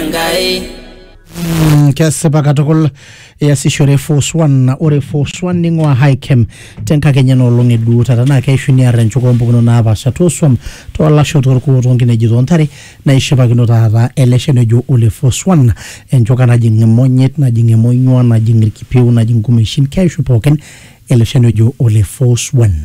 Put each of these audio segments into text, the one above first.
Enkai. Mm, kesipa katukul iasishore force one ore force one ning'ua hikem tenkakenya nolong eduo taata naa keishu niarra enchuka ompukunot napaasha toosuam toolasho torkuo toonkineji toontare naishipakino taata ele shani ojo ole force one enchuka najing imonyit najing emonyua najing irkipieu najing inkumeshin keishu pookin ele shani ojo ole force one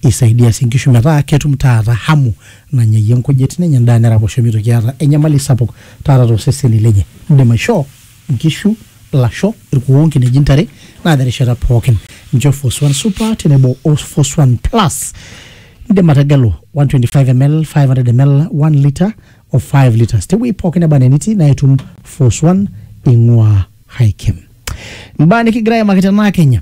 isaidia sii inkishu metaa ketum taata hamu nanya iyie nkujit, nenya endaa neraposho meitoki aata enyamali sapuk taata too seseni lenye. Indim aishoo nkishu, lasho, ilkuoo, nkineji, ntare naa te rishata pooki. Nchoo Foswan Super tenebo o Foswan Plus. Indim ategelu 125ml, 500ml, 1 litre o 5 litres te wueji pooki neba anaa enitii naa itum Foswan eing'uaa Highchem. Imbaa nikigira aimaki tenaa Kenya.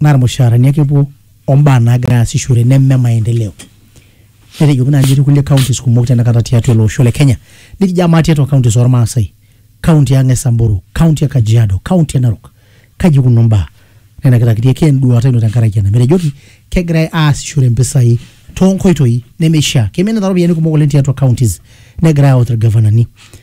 naa irmushaarani ake epuo ombaa naagira aasishore neme maendeleo. Netejoki naa etii kulie counties kumok tenakata tiatua ele osho le Kenya. Nikijo amaa tiatua counties ormaasai, county ang e Samburu, county e Kajiado, county e Narok, kaji ikununo mbaa? Nenakita kitii ake enduata ino tenkaraki ena. Metejoki kegirai aasishore mpisai too nkoitoi nemeishaa. Keiminita iropiyiani kumok oleng tiatua counties negirai aut irgavanani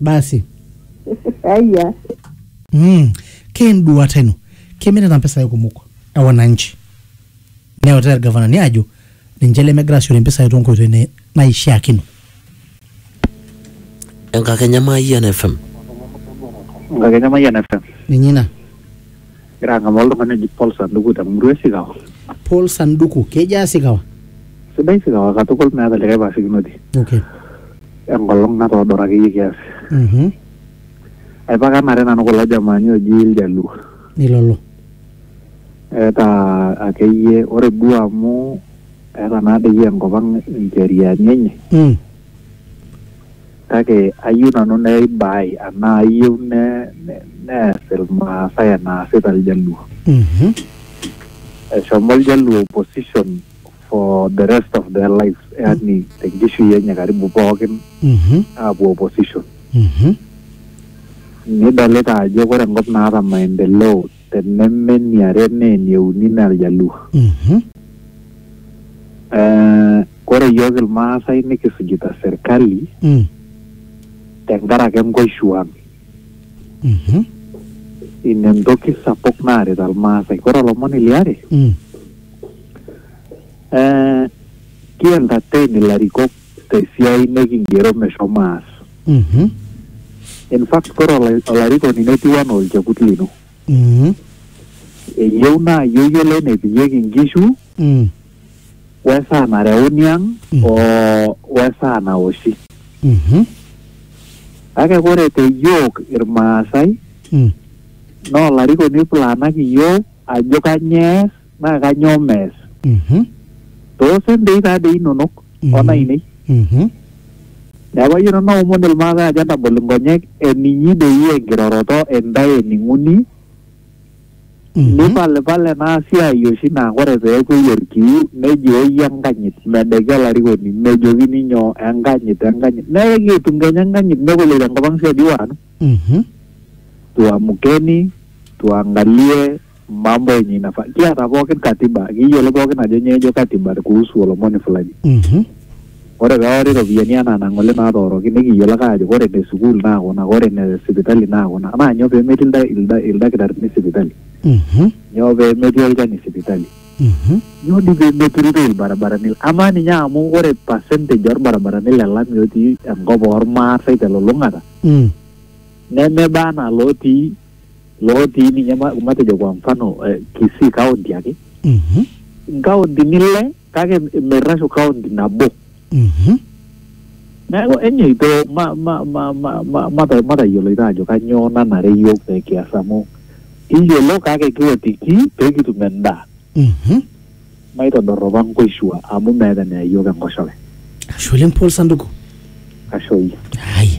basi Aya. mm. kenduata ino kemirita mpisai kumok e wananchi neutaa irgavanani ajo ninche lemegira asiore mpisai tonkoitoi ne- naishiakino Enkakenya Mayian FM. Nkakenya Mayian FM. ninye ina Egira ang'amaa oltung'ani oji Paul Sanduku te murua e Sikawa. Paul Sanduku, kejaa Sikawa? Sidai Sikawa katukul meeta likae paasikinoti. Okay. Enkolong natoodora akeyie kiasi. Mhm. Aipakanare nanu kulo jamaani oji Iljaluo. Ilolo. Eeta akeyie ore duo amu eeta naa doi enkop ang incheriani enye. Mm. Kake ayieu nanu neibaai anaa ayieu ne, ne, nees Ilmaasai enaasita Iljaluo. Mhm. Eshomo Iljaluo opposition for the rest of their lives, yaani tenkishui enye karibu pookin Mhm. aapuo opposition. Mhm. Nidolita ajo ore enkop naata maendeleo te neme eniare naa enieuni naa iljaluo Mhm. Eh, kore yiok ilmaasai nikisujita serkali Mm. tenkaraki enkoishuan Mhm. ina entoki sapuk naarita ilmaasai kore olomoni liare Mm. eh, ki entertain ilarikok te siai nikigero meshomo aas. Mhm. In fact, kore ola- olarikoni netiu anaa olchekut lino. Mhm. Eyieu naa iyieu yiolo enepikieki inkishu, Mm. wesaa nareuni ang' Mm. o wesaa naoshi. Mhm. Kake kore te yiok Irmaasai, Mm. naa olarikoni oiplaanaki iyiok ajo kanyoo ees naa kanyoo mees? Mhm. Too sentei taa dei inonok Mhm. o nainei. Mhm. Neaku ayeu nanu naomon Ilmaasai ajo entagol inkonyek eninyi dei enkiroroto intae ening'uni Mhm. nipalipal ena siai oshi naa ore peepuoi olkiu nejooi enkanyit medeki olarikoni mejokini nyoo enkanyit enkanyit naa ekitu etum kenya enkanyit negol tenkop ang' siadi wana Mhm. tuamkeni tuangalie mambo yenye inafaa kiata pookin katiba kiyiolo pookin ajo nyoo ejo katiba kuhusu olomoni fulani Mhm. ore peori iropiyiani anaa nang'ole natooroki nikiyiolo ake ajo ore ne sukuul naa kuna ore ne sipitali naa kuna naa nyoo pemetii ilda- ilda- ildakitarini sipitali Mhm. nyoo pemetii olchani sipitali Mhm. nyoo dii pemeturito ilbarabarani amaa ninye amu ore percentage orbarabarani le lami otii enkop ormaasai telulung'ata Mm. nemeba anaa lotii lootii ninye ma- matejo kwa mfano eh, Kisii county ake Mhm. nkauntini ile kake merrashu kaunti nabo Mhm. neeku enyeito ma- ma- ma- ma- ma- mata- matayioloito ajo kanyioo nanare yiok pee kias amu kiyiolo kake kiotiki pee kitum endaa Mhm. maitodorropa nkoishua amu meeta eneya yiok enkoshoke Ashe oleng Paul Sanduku. ashoyie Haya.